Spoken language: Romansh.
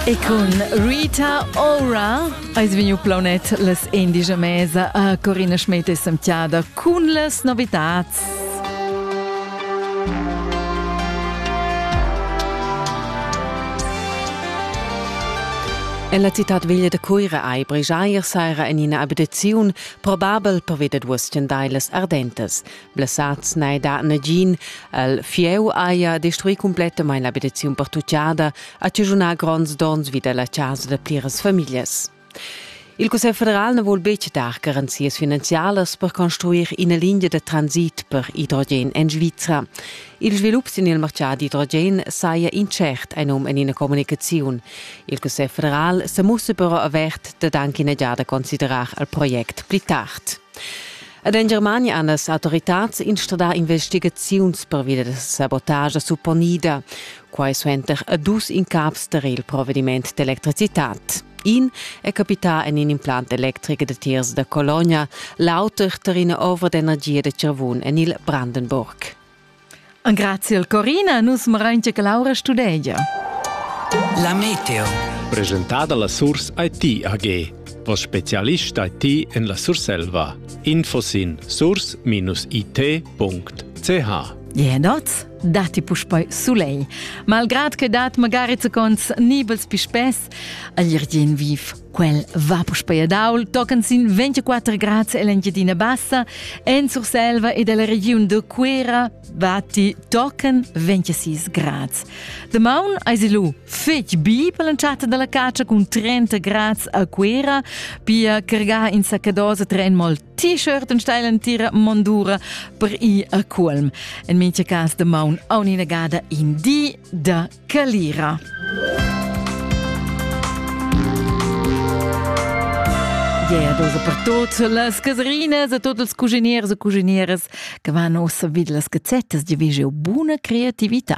E cun Rita Ora eis vegniu plaunet las indigia mesa a Corina Schmidt e Samtiada cun las novitats. Ella citat veglia da Cuira ei bregiair saira en ina abitaziun probabel per veder duos stendailas ardentas. Blessads n'hai dà nagin. El fieu haja destruì cumplettamain l'abitaziun pertutgada, ha chaschunà gronds donns vi da la chasa da pliras famiglias. Il Cussegl federal na vul betg dar garanzias finanzialas per construir ina linea da transit per idrogen en Svizra. Il svilup sin il martgà d'idrogen saja intschert ein um en ina communicaziun. Il Cussegl federal sa mussa però avert dad anche ina giada considerar il project pli tard. Ed en Germania han las autoritads instradà investigaziuns pervia da sabotagia supponida. Quai suenter a dus incaps tar il provediment d'electricitad. In è capità en in implant electric datiers da Cologna, l'auter tar ina ovra d'energia da Cervun en il Brandenburg. Grazie al Corina, nus marain che Laura studegia. La meteo. Presentada la Surs IT AG. Vos specialist IT en la Surselva. Infosin surs-it.ch Je noz, dati puspei sulei. Malgrad che dat magari zecons nibels pispes, aglir dien viv. Quel va puspei a Daul, tocan sin 24 grads ell'Engiadina Bassa, en Surselva e dalla regiun de Cuera batti tocan 26 grads. Damaun eis lu fetg bi per l'entschatta dalla caccia cun 30 grads a Cuera, pia cargar in saccadosa tren mol t-shirt en steil entira mondura per ir a Culm. En mincha cas damaun aunc ina gada in di da Calira. Yeah, dus per tot las caserinas e tots els cuginieres e cuginieres che van ossa vid las gazettas di vege buna creatività.